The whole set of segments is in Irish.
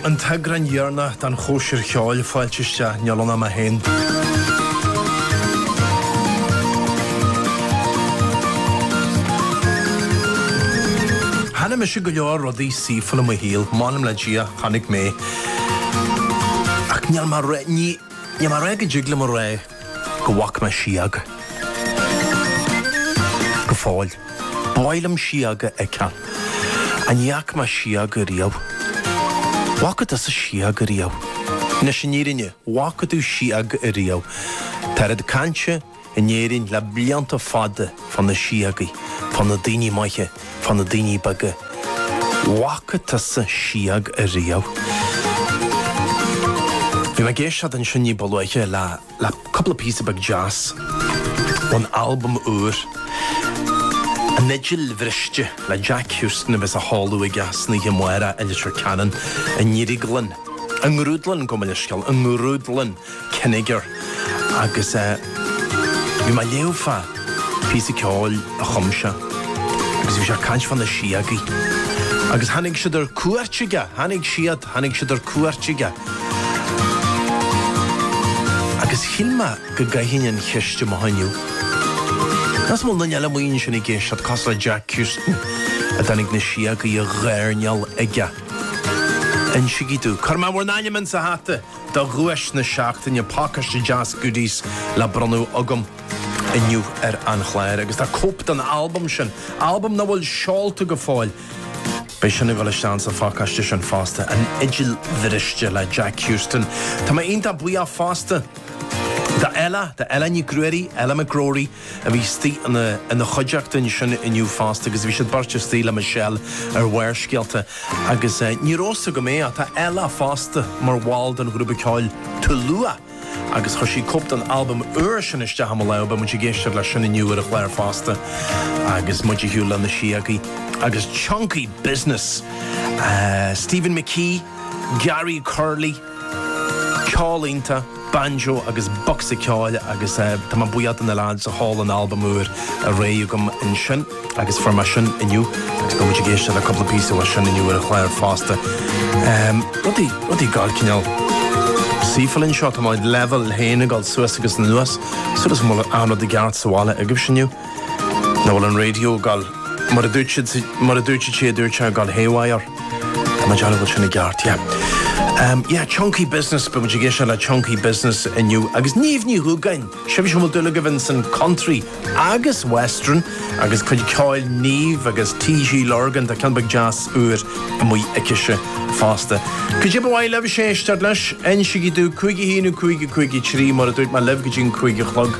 An t-eagrán dheireanach den Chóisir Cheoil fáilte isteach, níl ann ach mé féin. Chonaic mise go leor rudaí saoithiúla i mo shaol, m'anam le Dia, chonaic mé. Ach níl mé ag rá go dtig liom a rá go bhfaca mé síog go fóill. Ba mhaith liom síog a fheiceáil. Chan fhaca mé síog ariamh? bhfaca tusa síog ariamh? Anois an fhírinne, bhfaca tú síog ariamh? Tá oiread cainte in Éirinn le blianta fada fá na síogaí, fá na daoine maithe. fá na daoine beaga, bhfaca tusa síog ariamh. Bhí mé ag éisteacht ansin ní ba luaithe le le cúpla píosa beag deas ón albam úr An Fhidil Bhriste le Jack Houston a bheas á sheoladh aige san oíche amárach i Leitir Ceanainn i nDrioglann, i nGrúdlann, gabh mo leithscéal, i nGrúdlann! Kinnegar agus bhí mé ag léamh fá phíosa ceoil a chum sé agus bhí sé ag caint fá na síogaí agus tháinig siad ar cuairt aige, tháinig siad, tháinig siad ar cuairt aige agus shíl mé go gcaithfinn an cheist amach inniu. Anois an bhfuil duine eile amuigh ansin ag éisteacht, cosúil le Jack Houston, a dtáinig na síogaí a dh'airneál aige, insigí domh. Cuirfidh mé bhur n-ainm ins a hata! do dhuais na seachtaine, pacáiste deas goodies le bronnadh agam inniu ar an chlár agus tá cóip den albam sin, albam nach bhfuil seolta go fóill, beidh sin ag dul isteach sa phacáiste sin fosta, An Fhidil Bhriste le Jack Houston. Tá mé iontach buíoch fosta do Ella, do Ella Nic Ruairí, Ella McGrory, a bhí istigh ina chuideachta ansin inniu fosta agus bhí siad beirt istigh le Michelle ar Bharrscéalta agus ní raibh fhios agam é ach tá Ella fosta mar bhall den ghrúpa ceoil Tulua agus chuir sí cóip den albam úr sin isteach i mo lámh, beidh muid ag éisteacht leis sin inniu ar an chlár fosta agus muid ar shiúl leis na síogaí agus Chunky Business! Stephen McKee, Gary Curley. Ceol iontach, banjo agus bocsa ceoil agus tá mé buíoch de na leaids a sheol an albam úr ar aghaidh chugam ansin agus fuair mé sin inniu agus beidh muid ag éisteacht le cúpla píosa uaidh sin inniu ar an chlár fosta. Rudaí, rudaí ag dul cineál saoithiúil anseo, tá mo level féin ag dul suas agus anuas, súil is go bhfuil achan rud i gceart sa bhaile agaibhse inniu. Nó an bhfuil an radio ag gabháil Mar a dúirt siad Mar a dúirt siad sí a dúirt sé ag gabháil haywire Tá muid ann an bhfuil sin i gceart yeah Ehm yeah Chunky Business Beimid ag éisteacht le Chunky Business inniu agus Niamh Ní Dhúgáin Sibhse a bhfuil dúil agaibh ins an country agus western agus cuid ceoil Niamh agus TG Lurgan tá ceann beag deas úr amuigh aicise fosta. Cad é ba mhaith libhse éisteacht leis Inisigí domh cúig a haon nó cúig a cúig a trí mar a dúirt mé libh go dtí an cúig a chlog.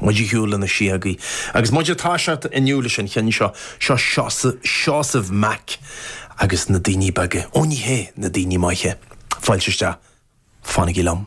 Muid a shiúil ina síogaí. Agus muid ag toiseacht inniu leis an chinn seo, seo Seosamh Mac agus na daoine beaga. Ó ní hea, na daoine maithe. Fáilte isteach. Fanaigí liom.